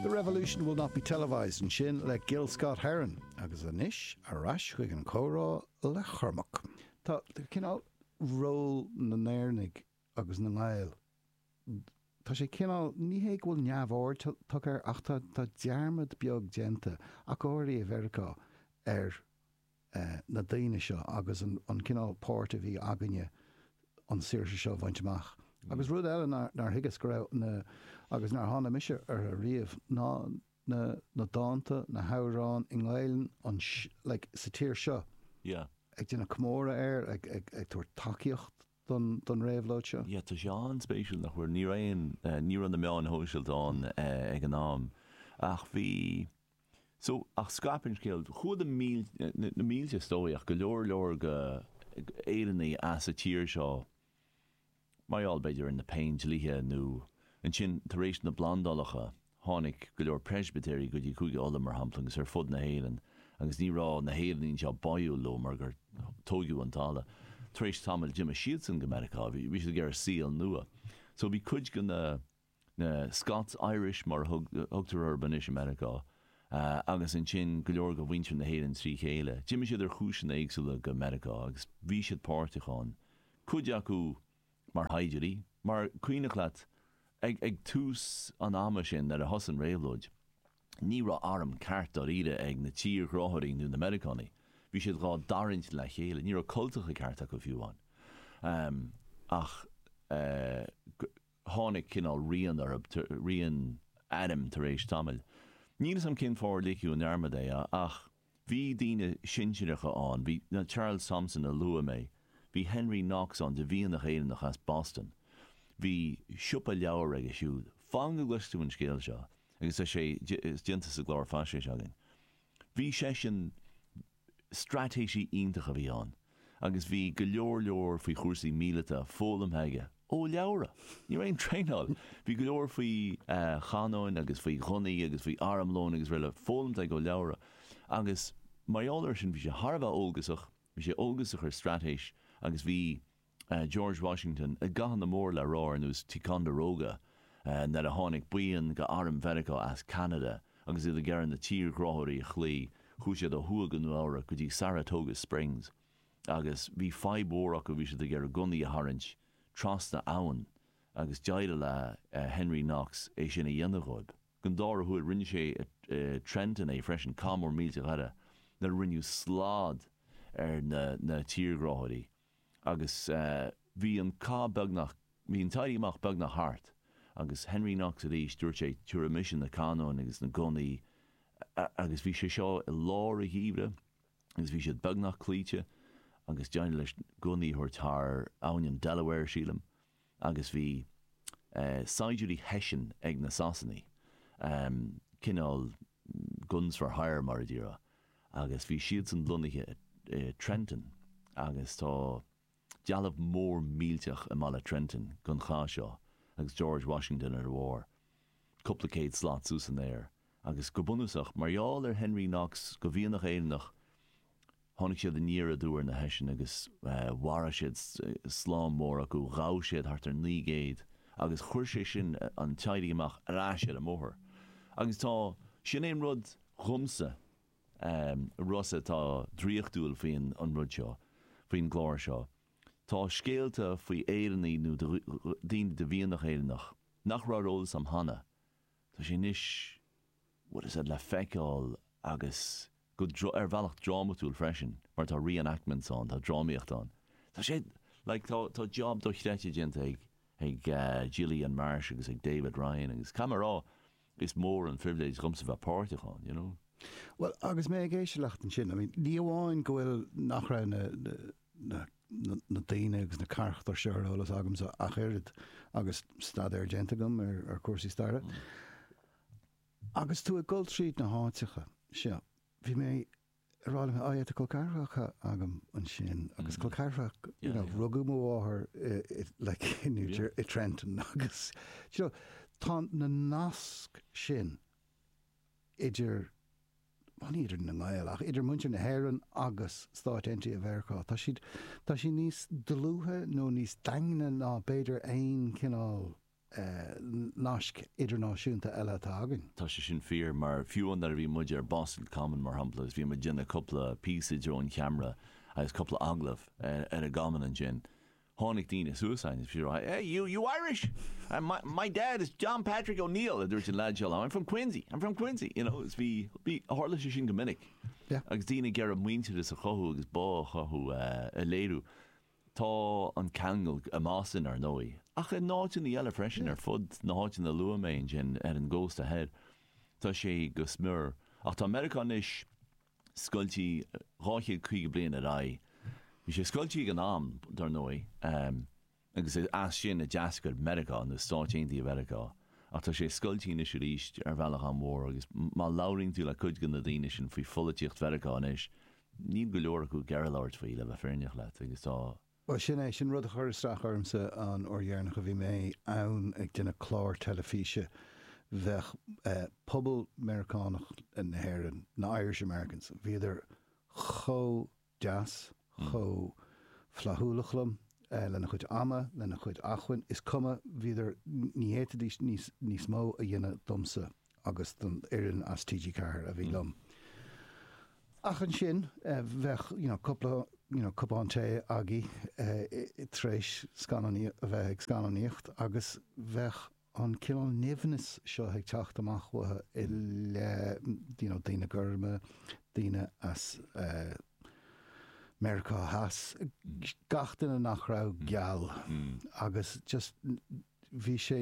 The Revolution Will Not Be Televised, ansin le Gil Scott Heron, agus anois ar ais chuig an chomhrá le Cormac. Tá cineál ról na nÉireannaigh agus na nGael, tá sé cineál, ní hé go bhfuil neamhaird tugtha air ach tá dearmad beag déanta, ach go háirithe i Meiriceá, ar. na daoine seo agus an cineál páirt a bhí againne an saoirse seo a bhaint amach. Agus rud eile nár thuigeas go raibh na, agus nár thána mise orthu riamh, ná na na dánta, na hamhráin i nGaelainn an like sa tír seo, Yeah. ag déanamh comóradh air, ag ag ag tabhairt tacaíocht don don réabhlóid seo. Yeah, tá sé an-spéisiúil nach bhfuil, ní raibh aon, ní raibh na meáin shóisialta ann ag an am ach bhí. So, ach scaip an scéal. Chuaigh na mílte, na mílte is dóigh, ach go leor leor go, Éireannaigh as a tír seo, mar gheall b'fhéidir ar na Péindlíthe nó, ansin tar éis na bplandálacha, tháinig go leor Preispitéirigh go dtí Cúige Uladh mar shampla agus ar fud na hÉireann agus ní raibh na hÉireannaigh anseo báúil leo mar gur tóigeadh an talamh. Tar éis tamaill d'imigh siadsan go Meiriceá, bhí siad ag iarraidh saol nua. So bhí cuid go na. na Scots Irish mar a thugtar orthu anois i Meiriceá, agus ansin go leor de mhuintir na hÉireann trí chéile. D'imigh siad ar chúiseanna éagsúla go Meiriceá agus bhí siad páirteach ann, cuid acu mar shaighdiúirí, mar cuimhnigh leat ag tús an ama sin nuair a thosaigh an réabhlóid, ní raibh arm ceart dáiríre ag na tírghráthóirí nó na Meiriceánaigh, bhí siad dhá dtarraingt le chéile, ní raibh cultacha cearta acu fiú ann. Ach. tháinig cineál rian orthu, rian airm tar éis tamaill. Níl 'fhios a'm cén fáth ar ligeadh i ndearmad é, ach bhí daoine sinsireacha ann, bhí Charles Thomson a luaigh mé, bhí Henry Knox ann de mhianach Éireannach as Boston, bhí siopa leabhar aige siúd. Fan go gcloisfidh tú an scéal seo, agus tá sé déanta sa gclár faisnéis againn. Bhí seisean, straitéisí iontach a bhí ann agus bhí go leor leor faoi chúrsaí míleata foghlamtha aige ó leabhra. Ní raibh aon traenáil. Bhí go leor faoi chanóin agus faoi ghunnaí agus faoi armlón agus rud eile foghlamtha aige ó leabhra agus mar gheall air sin bhí sé thar a bheith eolgasach, bhí sé eolgasach ar straitéis agus bhí. George Washington i gcathanna mór le rá ar nós Ticonderoga nuair a tháinig buíon de Arm Mheiriceá as Ceanada agus iad ag iarraidh na tírghráthóirí a chloí, chuaigh siad ó thuaidh go Nua-Eabhrac go dtí Saratoga Springs agus bhí fadhb mhór acu, bhí siad ag iarraidh gunnaí a tharraingt trasna abhann agus d'éirigh le Henry Knox é sin a dhéanamh dhóibh. An dára huair rinne sé i Trenton é freisin, cath mór millteach eile nuair a rinneadh slad ar na tírghráthóirí. agus bhí an cath beagnach, bhí an t-éirí amach beagnach thart, agus Henry Knox arís, dúirt sé, tabharfaidh mise na canóin agus na gunnaí, agus bhí sé seo i lár an gheimhridh, agus bhí siad beagnach cloíte, agus d'éirigh leis gunnaí a thabhairt thar abhainn na Delaware, sílim. agus bhí saighdiúirí Hessian ag na Sasanaigh, cineál guns for hire mar a déarfá, agus bhí siadsan lonnaithe i Trenton agus tá dealbh mór millteach i mbaile Trenton gon chath seo agus George Washington ar a bharr, cúpla céad slat suas san aer. Agus go bunúsach, mar gheall ar Henry Knox go mhianach Éireannach, tháinig siad aniar aduaidh ar na Hessians agus mharaigh siad slám mór acu, ghabh siad thart ar naoi gcéad agus chuir sé sin an t-éirí amach ar ais ar an mbóthar. Agus tá, sin é an rud dhomsa, Rossa, atá draíochtúil faoin rud seo, faoin gclár seo, tá scéalta faoi Éireannaigh nó daoine de mhianach Éireannach nach raibh ar eolas a'm cheana, Tá sé anois, bhuel, iad le feiceáil agus go, ar bhealach drámatúil freisin, mar tá re-enactments ann, tá drámaíocht ann. Tá sé, like, tá, tá job dochreidte déanta ag, ag Gillian Marsh agus ag David Ryan agus caithfidh mé a rá, is mór an phribhléid dhomsa bheith páirteach ann, you know. Bhuel, agus mé ag éisteacht leat ansin, I mean, ní amháin go bhfuil, nach raibh na, na, na daoine agus na carachtair seo ar eolas agamsa ach oiread agus staidéar déanta agam ar chúrsaí staire. Agus tú ag dul tríd na háiteacha seo, bhí mé ag rá leat, tá col ceathracha agam ansin, agus col ceathracha, you know, rugadh mo mháthair like in New Jersey, i Trenton, agus, you know, tá na naisc sin idir, bhuel ní idir na Gaeil, ach idir muintir na hÉireann agus Stáit Aontaithe Mheiriceá, tá siad, tá siad níos dlúithe nó níos daingne ná b'fhéidir aon chineál nasc idirnáisiúnta eile atá againn. Tá sé sin fíor, mar fiú nuair a bhí muid ar Boston Common mar shampla agus bhí muid ag déanamh cúpla píosa i dtreo an cheamara agus cúpla agallamh ar an gCommon ansin, Tháinig daoine suas againn agus bhí siad ag rá, Eh, you, you Irish? My, my dad is John Patrick O'Neill, a dúirt an leaid seo liom, I'm from Quincy, I'm from Quincy, you know, is bhí, bhí, tharla sé sin go minic. Yeah. Agus daoine ag iarraidh muintearas a chothú agus bá a chothú, eh, a léiriú. Tá an ceangal i mBoston, ar ndóigh, ach in áiteanna eile freisin ar fud na háiteanna a luaigh mé ansin ar an gcósta thoir, tá sé go smior. Ach tá Meiriceá anois. scoiltí 250 bliain ar aghaidh. Bhí sé scoiltí ag an am, dar ndóigh, agus is as sin a d'eascair Meiriceá, nó Stáit Aontaithe Mheiriceá, ach tá sé scoiltí anois arís ar bhealach an-mhór, agus má labhraíonn tú le cuid de na daoine sin faoi pholaitíocht Mheiriceá anois, níl go leor acu ag labhairt faoi, le bheith fírinneach leat, agus tá. Bhuel, sin é. Sin rud a chuir isteach ormsa an uair dheireanach a bhí mé ann ag déanamh clár teilifíse. Bheadh eh, pobal Meiriceánach na hÉireann, na Irish Americans, bhíodar chomh deas, chomh flaithiúlach liom, eh, lena gcuid ama, lena gcuid acmhainn, is cuma, bhíodar, ní fhéadfaidís níos, níos mó a dhéanamh domsa. agus don fhoireann as TG Ceathair a bhí liom. Ach ansin bheadh you know cúpla you know cupán tae againn tar éis scannán a bheith ag scannánaíocht agus bheadh an cineál nimhnis seo ag teacht amach uathu i leith you know daoine gorma, daoine as eh Meiriceá Theas, gach duine nach raibh geal agus just bhí sé,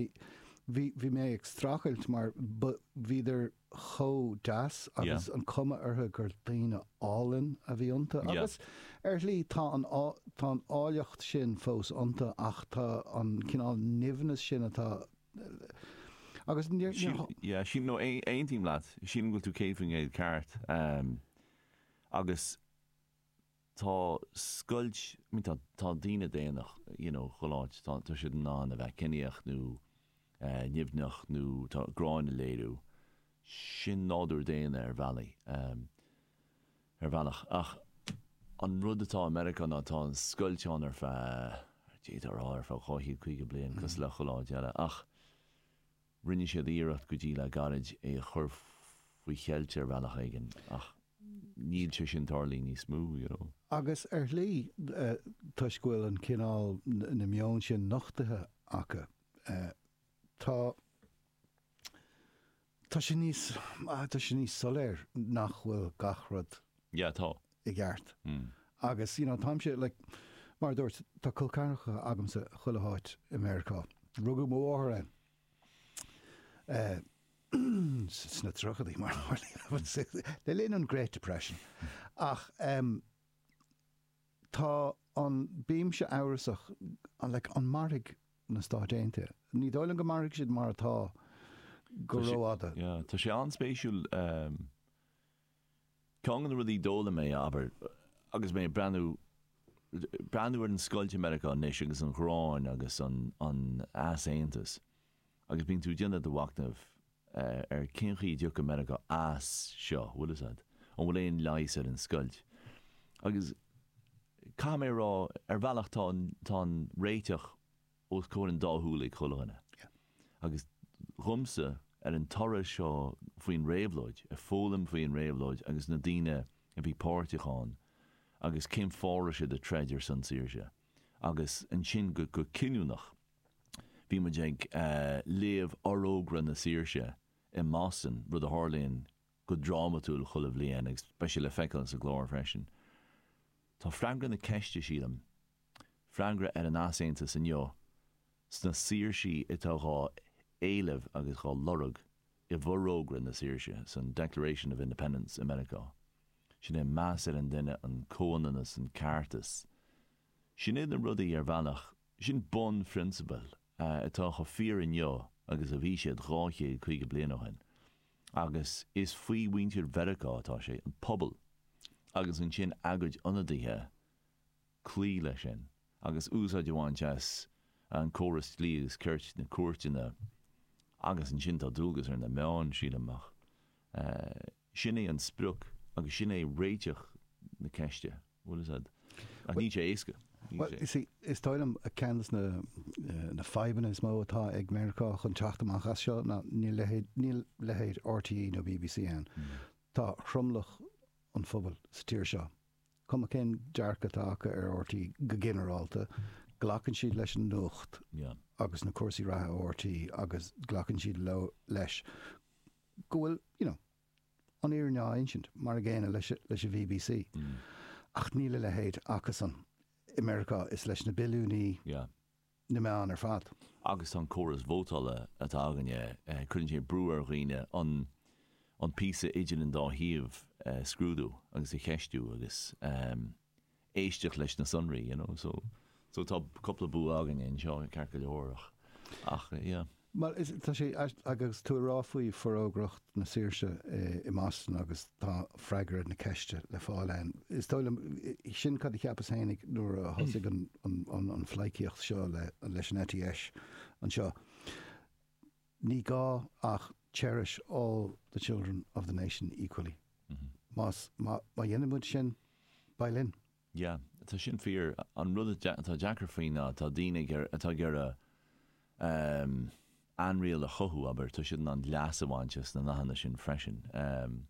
bhí, bhí mé ag strachailt mar ba, bhíodar chomh deas agus an cuma orthu gur daoine álainn a bhí iontu agus ar shlí tá an, tá an áilleacht sin fós iontu ach tá an cineál nimhneas sin atá agus níor, níor. Yeah, sílim, no, aontaím leat, sílim go bhfuil tú céad faoin gcéad ceart agus tá scoilt, I mean tá daoine daonna you know ghalánta, tá siad in ann a bheith ciníoch nó nimhneach nó tá gráin a léiriú, sin nádúr daonna ar bhealaí, ar bhealach ach an rud atá i Meiriceá ná tá an scoilt ann ar feadh, d'fhéadfá a rá ar feadh dhá chéad caoga bliain cosúil le chuile áit eile ach, Rinne siad iarracht go dtí le gairid é a chur faoi cheilt ar bhealach éigin ach níl sé sin ag tarlú níos mó, you know. Agus ar shlí, toisc go bhfuil an cineál, na meoin sin nochtaithe acu, tá, tá sé níos, tá sé níos soiléire nach bhfuil gach rud Yeah, tá. i gceart. Agus you know, táimse like, mar a dúirt, tá col ceathracha agamsa chuile háit i Meiriceá. Rugadh mo mháthair ann eh sna tríochadaí mar a tharlaíonn le linn an Great Depression. Ach em tá an, bímse amhrasach like an mairfidh na Stáit Aontaithe? Ní dóigh liom go mairfidh siad mar atá go rófhada. Tá sé, yeah, tá sé an-spéisiúil em. Ceann de na rudaí a d'fhoghlaim mé, abair, agus mé ag breathnú, breathnú ar an scoilt i Meiriceá anois agus an ghráin agus an, an easaontas agus bíonn tú ag déanamh do mhachnaimh ar cén chaoi a dtiocfadh Meiriceá as seo, bhfuil 'fhios a'd. An bhfuil aon leigheas ar an scoilt? Agus caithfidh mé a rá, ar bhealach tá an, tá an réiteach os comhair an dá shúl ag chuile dhuine agus dhomsa ar an turas seo faoin réabhlóid, ag foghlaim faoin réabhlóid agus na daoine a bhí páirteach ann agus cén fáth a raibh siad ag troid ar son saoirse. Agus ansin go cinniúnach bhí muid ag léamh Forógra na Saoirse i mBoston, rud a tharlaíonn go drámatúil chuile bhliain agus beidh sé le feiceáil sa gclár freisin. Tá freagra na ceiste, sílim, freagra ar an easaontas inniu, sna saoirsí atá dhá éileamh agus dhá lorg i bhForógra na Saoirse, san Declaration of Independence, i Meiriceá. Sin é meas ar an duine, an comhionannas, an ceartas. Sin iad na rudaí, ar bhealach, sin bunphrionsabail atá chomh fíor inniu agus a bhí siad dhá chéad caoga bliain ó shin. Agus is faoi mhuintir Mheiriceá atá sé, an pobal, agus ansin a gcuid ionadaithe, cloí leis sin agus úsáid a bhaint as an córas dlí agus cirt, na cúirteanna. Agus ansin tá dualgas ar na meáin, sílim, ach sin é an sprioc agus sin é réiteach na ceiste. Bhuel, is ea. Ach níl sé éasca. Bhuel, you see, is dóigh liom ceann de na, eh, na fadhbanna is mó atá ag Meiriceá chun teacht amach as seo ná níl leithéid, níl leithéid RTÉ nó BBC ann. Mm. Tá tromlach an phobail sa tír seo, cuma cén dearcadh atá acu ar RTÉ go ginearálta, glacann siad leis an nuacht yeah. agus na cúrsaí reatha ó RTÉ agus glacann siad leis go bhfuil, you know, an fhírinne á insint, mar an gcéanna leis an bbc. Ach níl a leithéid acusan i Meiriceá is leis na billiúnaí na meán ar fad. Agus tá an córas vótála atá againne, cuireann sé brú ar dhaoine an píosa idir an dá thaobh a scrúdú agus a cheistiú agus. éisteacht leis na sonraí, you know, so, so tá cúpla bua againne anseo, ceart go leor ach, ach, yeah. Bhuel, is, tá sé, agus tú ag rá faoi Forógracht na Saoirse i mBoston agus tá freagra na ceiste le fáil ann, is dóigh liom, sin cad a cheapas féin ag, nuair a thosaigh an, an, an, an phleidhcíocht seo le, leis an ETS anseo. Ní gá ach cherish all the children of the nation equally. Má dhéanann muid sin, beidh linn. Yeah, tá sin fíor. An rud atá deacair faoi ná tá daoine ag iarraidh, atá ag iarraidh ehm ainriail a chothú, abair, tá siad in ann leas a bhaint as na nathanna sin freisin. Ehm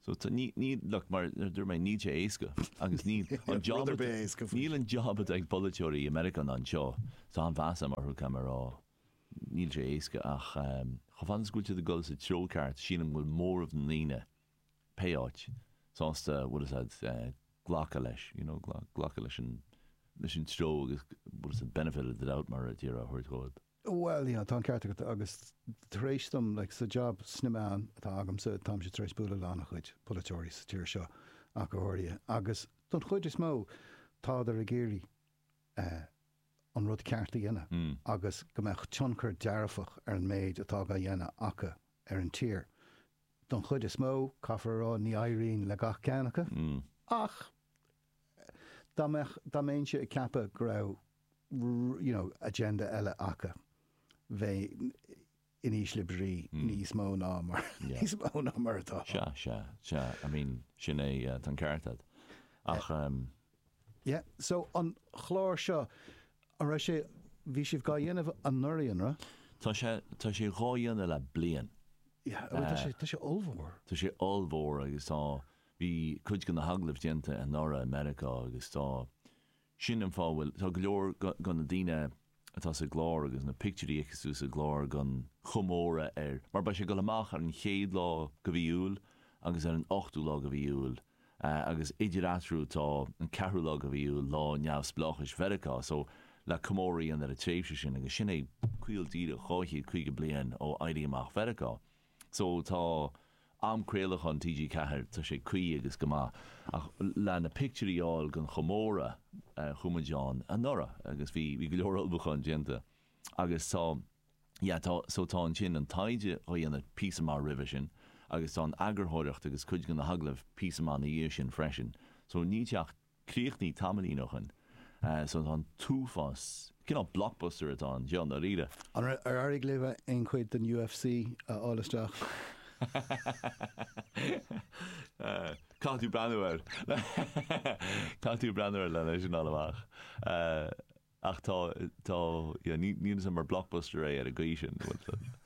so tá, ní, ní, look, mar a dúirt mé, níl sé éasca agus níl an job, níl an job atá ag polaiteoirí i Meiriceá ná anseo, tá an-mheas agam orthu, caithfidh mé a rá. Níl sé éasca ach, chomh fada is go bhfuil tú ag dul sa treo ceart, sílim go bhfuil móramh na ndaoine, pé áit, sásta, bhfuil fhios a'd, glacadh leis, you know, glacadh leis an, leis an treo agus bhfuil fhios a'd benefit of the doubt mar a déarfá a thabhairt dhóib. Bhuel, yeah, tá an ceart agat agus tar éis dom, like, sa job nuachta sna meáin atá agamsa, táimse tar éis bualadh lena a chuid polaiteoirí sa tír seo ach go háirithe agus don chuid is mó tádar ag iarraidh, an rud ceart a dhéanamh agus go mbeadh tionchar dearfach ar an méid atá á dhéanamh acu ar an tír. Don chuid is mó, caithfear a rá, ní éiríonn le gach ceann acu, ach dá mbeadh, dá mbéinnse ag ceapadh go raibh, you know, agenda eile acu, bheinn, in ísle brí níos mó ná mar níos mó ná mar atá. Sea, sea, sea, I mean, sin é, tá an ceart agat. Ach, em. Yeah, so an clár seo, an raibh sé, bhí sibh dhá dhéanamh anuraidh, an raibh? Tá sé, tá sé dhá dhéanamh le bliain. Yeah, bhuel tá sé, tá sé ollmhór. Tá sé ollmhór agus tá, bhí cuid de na hagallaimh déanta anuraidh i Meiriceá agus tá, Sin an fáth a bhfuil, tá go leor de na daoine atá sa gclár agus na pictiúirí a fheiceas tú sa gclár gon chomóradh, ar, mar beidh sé ag dul amach ar an chéad lá go mhí Iúil agus ar an ochtú lá go mhí Iúil, agus idir eatarthu tá an ceathrú lá go mhí Iúil, lá neamhspleáchais Mheiriceá, so le comóradh a dhéanamh ar an tréimhse sin, agus sin é caol díreach 250 bliain ó Éirí Amach Mheiriceá. So tá am craolacháin TG Ceathair, tá sé cuí agus go maith. Ach le na pictiúirí a fháil gon chomóradh chuaigh muid ann anuraidh agus bhí bhí go leor ullmhúcháin déanta. Agus tá yeah tá so tá ansin an taighde dhá dhéanamh píosa maith roimhe sin agus tá an eagarthóireacht agus cuid go na hagallaimh píosa maith na dhiaidh sin freisin. So ní, teacht. Críochnaithe tamaillín ó shin. So tá an t-uafás, cineál blockbuster atá ann, seo, i ndáiríre. Ar, ar éirigh libh aon chuid den UFC a fháil isteach? Caithfidh tú breathnú air. Caithfidh tú breathnú air lena é sin a fháil amach. Ach tá, tá, yeah, ní, níos mó mar blockbuster é ar an gcaoi sin, bhfuil a fhios agat?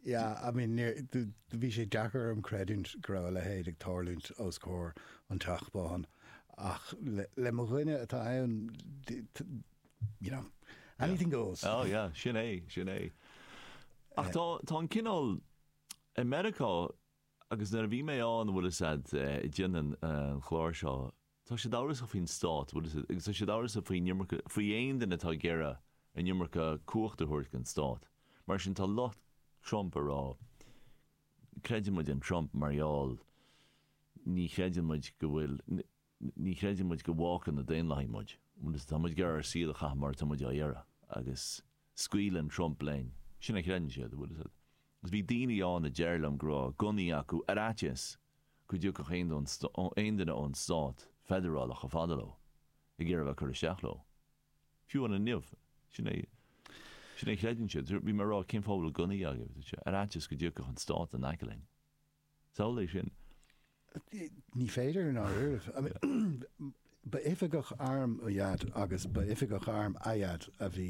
Yeah, I mean, níor, do, do, bhí sé deacair orm creidiúint go raibh a leithéid ag tarlúint os comhair an Teach Bán, ach le, le mo dhuine atá ann, do, do, you know, Yeah. anything goes. Oh, yeah, sin é, sin é. Ach tá, tá an cineál, i Meiriceá, agus nuair a bhí mé ann, bhfuil a fhios agat, ag déanamh an chláir seo, Tá siad amhrasach faoin stát, bhfuil a fhios agat, agus tá siad amhrasach faoin iomarca, faoi aon duine atá ag iarraidh an iomarca cumhachta a thabhairt don stát. Mar sin, tá lucht Trump ag rá, creideann muid in Trump mar gheall, ní chreideann muid go bhfuil, ní chreideann muid go bhfágfaidh na Daonlathaigh muid, bhfuil a fhios agat, tá muid ag iarraidh ár saol a chaitheamh mar atá muid ag iarraidh, agus scaoileann Trump linn. Sin a chreideann siad, bhfuil a fhios agat. Agus bhí daoine ann a deir liom go raibh gunnaí acu ar fhaitíos go dtiocfadh aon duine ón stát feidearálach chomh fada leo ag iarraidh a bheith ag cur isteach leo. Fiú amháin inniu, sin é a chreideann siad. Bhí mé ag rá, cén fáth a bhfuil gunnaí agaibh? Ar fhaitíos go dtiocfadh an stát in aice linn. Samhlaigh é sin. Ní féidir, i ndáiríribh. Ba oifigeach airm mo dhaid agus ba oifigeach airm a dhaid a bhí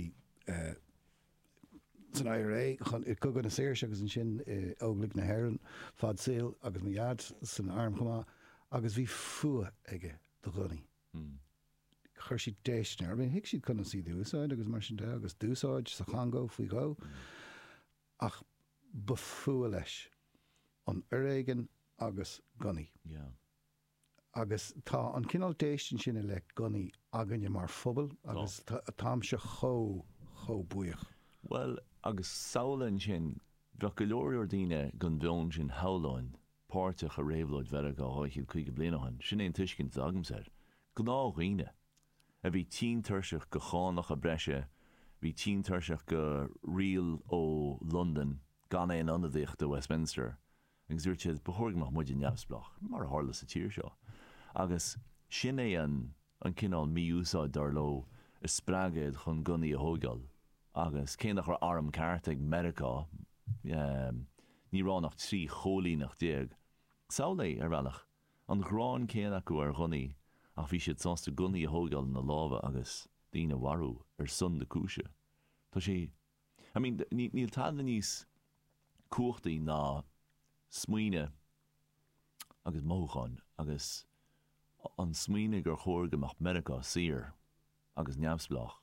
san IRA i gCogadh na Saoirse agus ansin i Óglaigh na hÉireann fad saoil agus mo dhaid san arm chomh maith agus bhí fuath aige do ghunnaí. Chuir siad déistin air. Thuig siad conas iad a úsáid agus mar sin de agus d'úsáid sa Chongó faoi dhó. Ach ba fuath leis. an foréigean agus gunnaí. Yeah. Agus tá an cineál déistin sin i leith gunnaí againne mar phobal Tá. agus táimse chomh, chomh buíoch. Bhuel, agus samhlaigh ansin, bheadh go leor, leor daoine den mheon sin, shamhlóinn, páirteach i réabhlóid Mheiriceá 250 bliain ó shin. Sin é an tuiscint atá agamsa air. Gnáthdhaoine. a bhí tinn tuirseach de chánacha breise, bhí tinn tuirseach de riail ó Londain gan aon ionadaíocht i Westminster agus dúirt siad, ba chóir go mbeadh muide neamhspleách, mar a tharla sa tír seo. Agus sin é an cineál mí-úsáid, dar leo, a spreag iad chun gunnaí a thóigeáil. Agus cé nach raibh arm ceart ag Meiriceá, ní raibh ann ach 13 chóilíneacht. Samhlaigh, ar bhealach. an ghráin céanna acu ar ghunnaí ach bhí siad sásta gunnaí a thógáil ina lámha agus daoine a mharú ar son na cúise. Tá sé. I mean, níl tada níos cumhachtaí ná smaoineamh agus mothúcháin agus an smaoineamh gur chóir go mbeadh Meiriceá saor, agus neamhspleách,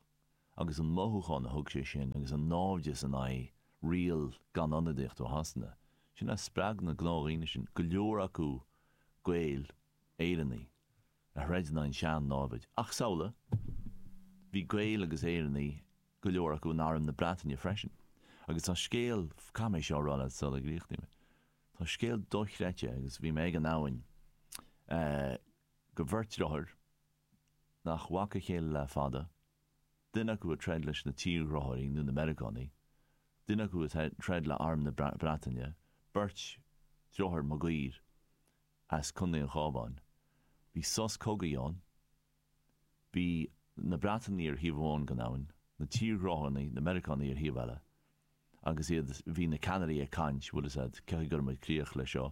agus an mothúchán a thug sé sin agus an náimhdeas in aghaidh riail gan ionadaíocht ó Shasana, sin a spreag na gnáthdhaoine sin, go leor acu Gaeil, Éireannaigh, le troid in aghaidh an tsean-námhaid. Ach samhlaigh, bhí Gaeil agus Éireannaigh go leor acu in arm na Breataine freisin. Agus tá scéal, caithfidh mé seo a rá leat sula gcríochnaím é, tá scéal dochreidte, agus bhí mé ag an abhainn, eh, de bheirt deartháir, nach bhfaca a chéile le fada, duine acu ag troid leis na tírghráthóirí nó na Meiriceánaigh, duine acu ag troid le arm na Breataine, beirt deartháir Maguire as Contae an Chábháin. Bhí sos cogaidh ann. Bhí na Breatanaigh ar thaobh amháin den abhainn, na tírghráthóirí, na Meiriceánaigh ar thaobh eile. Agus, yeah, bhí na ceannairí ag caint, bhuel, is ea, caithfidh go gcuirfimid críoch le seo.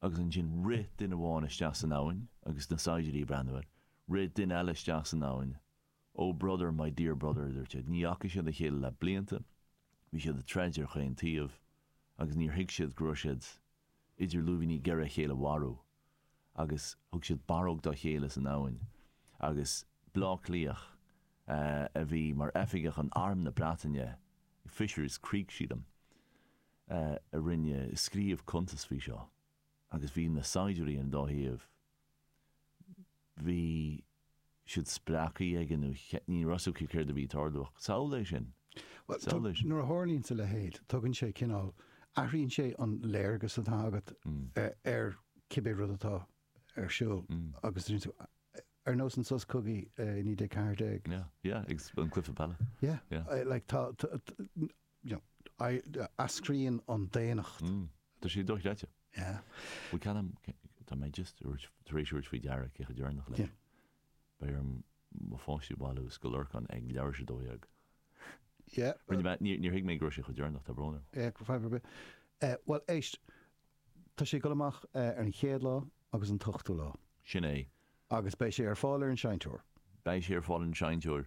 agus ansin rith duine amháin isteach san abhainn agus na saighdiúirí ag breathnú air, rith duine eile isteach san abhainn, Oh brother, my dear brother, a dúirt siad, ní fhaca siad a chéile le blianta, bhí siad ag troid ar chaon taobh agus níor thuig siad go raibh siad idir lúibíní ag iarraidh a chéile a mharú, agus thug siad barróg dá chéile san abhainn, agus Bleá Cliathach a bhí mar oifigeach in Arm na Breataine, Fisher's Creek sílim. a rinne scríobh cuntas faoi seo agus bhí na saighdiúirí ar an dá thaobh bhí siad spréachta agus ní raibh 's acu céard a bhí ag tarlú ach samhlaigh é sin, Bhuel, samhlaigh é sin. Nuair a tharlaíonns a leithéid tugann sé cineál, athraíonn sé an léargas atá agat ar cibé rud atá ar siúl agus rinne tú, ar nós an sos cogaidh i 1914. Yeah, yeah, agus an cluiche peile. Yeah, yeah. like tá, eascraíonn an daonnacht. Mm. Tá sé dochreidte. Yeah. Bhuel, cogar, tá mé just tabhairt, tar éis tabhairt faoi deara cé chomh deireanach is. Yeah. Beidh orm mo pháistí a bhailiú ó Scoil Lorcáin ag leathuair tar éis a dó dhéag. Yeah. Rinne mé, níor, níor thuig mé go raibh sé chomh deireanach, tá brón orm. Yeah, gan fadhb ar bith. Eh, bhuel éist, tá sé ag dul amach ar an chéad lá agus an t-ochtú lá. Sin é. Agus beidh sé ar fáil ar an seinnteoir. Beidh sé ar fáil ar an seinnteoir.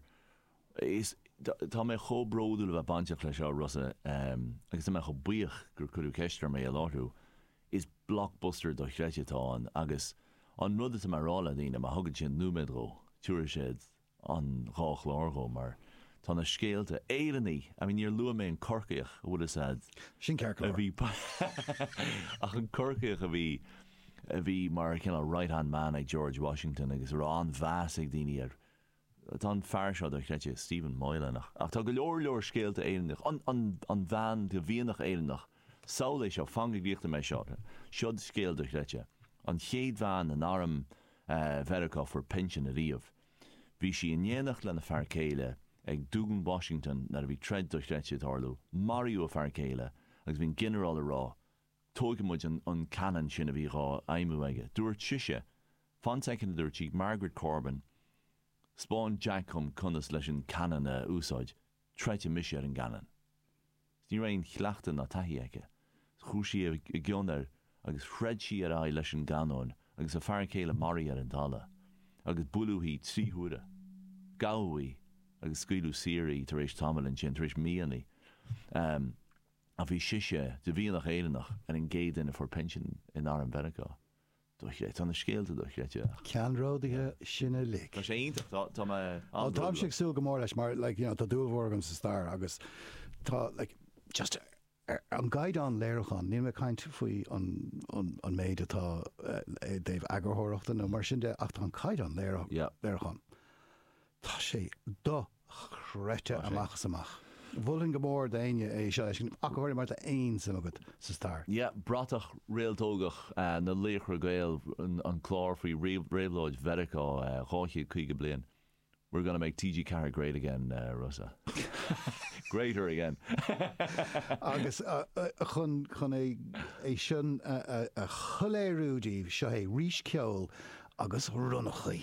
Is, tá, tá mé chomh bródúil a bheith bainteach leis seo, Rossa, agus tá mé chomh buíoch gur cuireadh ceist orm é a láithriú. Is blockbuster dochreidte atá ann agus an rud atá mé a rá le daoine, má thugann sé nóiméad dhó, tiúrfaidh siad an dhá chlár dhó mar tá na scéalta Éireannaí I mean níor luaigh mé an Corcaíoch a' bhfuil 'fhios a'd Sin ceart go leor. bhí ach an Corcaíoch a bhí a bhí mar cineál right hand man ag George Washington agus a raibh an-mheas ag daoine air tá an fear seo dochreidte Stephen Moylan ach tá go leor leor scéalta Éireannach an an an bhean de mhianach Éireannach Saol é seo, fan go gcríochnóidh mé seo, seod scéal dochreidte. An chéad bhean in arm Mheiriceá a fuair pinsean ariamh. Bhí sí in éineacht lena fear céile ag Dún Washington nuair a bhí troid dochreidte ag tarlú. Maraíodh a fear céile agus bhí an ginearál ag rá Tóigfidh muid an cannon sin a bhí dhá fheidhmiú aige. Dúirt sise, Fan soicind a dúirt sí, Margaret Corbin, 'spáin Jack dhom conas leis an cannon a úsáid. troidfidh mise ar an gcannon. Is ní raibh aon chleachtadh ná taithí aici. Chuaigh sí i gcionn air agus throid sí ar aghaidh leis an gcanóin agus a fear céile maraithe ar an talamh, agus buaileadh í trí huaire. Gabhadh í agus scaoileadh saor í tar éis tamaill ansin, tar éis míonna, em, ach bhí sise, de mhianach Éireannach, ar an gcéad duine a fuair pinsean in arm Mheiriceá. Dochreidte. Tá na scéalta dochreidte ach. Ceannródaithe sin uilig. Tá sé iontach. Tá, tá mé an-bhródúil. Bhuel táimse ag súil go mór leis mar like you know tá dúil mhór agam sa stair agus tá like just ar an gcaighdeán léiriúcháin, níl mé ag caint faoi an, an, an méid atá i dtaobh eagarthóireachta nó mar sin de ach tá an caighdeán léiriúcháin, tá sé do. chreidte amach is amach. Mholfainn go mór d'éinne é seo a fheiscint, ach go háirithe má tá aon suim agat sa stair. Yeah, bratach réaltógach na Laochra Gael, an clár faoi réabhlóid Mheiriceá 250 bliain, we're gonna make TG4 great again Rossa, greater again. Agus chun é sin a shoiléiriú daoibh, seo é arís, ceol agus Ronnachaí!